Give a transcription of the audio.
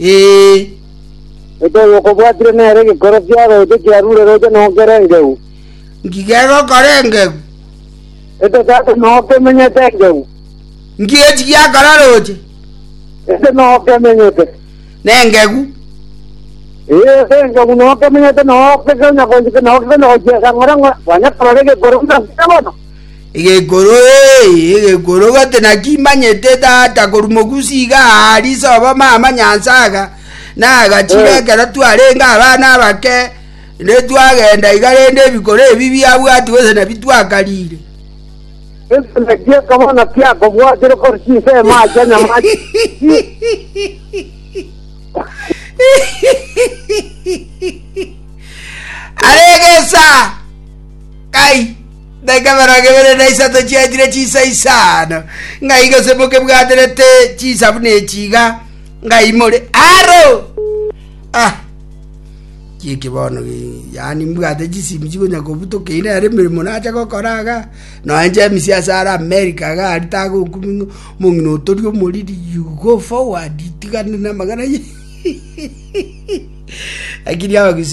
Ee. Ekero okobwatire nere gekoro kia roche kiarure roche nokere engeu. Nki gegokora engeu? Eke sasa nokemenyete engeu. Nki echi giakora roche? Eke nokemenyete. Nengegu. Ee, ase engeu nokemenyete nokekenya gochika nokekenya gochia esang'ore ng'a kwanya korora egekoro ng'a nkiya bono. Egekoro, ee, egekoro gati nakimanyete tata korwa mogusi iga aa riso obo mama nyansaga nagachire Eh. ekero twarenge abana abake rende twagenda iga rende ebikoro ebi biabwati gose nabi twakarire Gento naki ekabana kiakobwatire kore chinsemo acha nyamachi. aregesa Ai, daika emerongo ebere na isato chiachire chinsa isano, ng'ai gose mokebwaterete chinsa buna echi iga, ng'ai more aro? Ah, chieki bono gi- yaani mbwate chisimi chigonya kobutoka ine ere emeremo nacha gokora iga nonya james ase are america iga aria tagokumia ng'a omong'ina oyo tori omoriri you go forward tigana na amagana lakini abagusii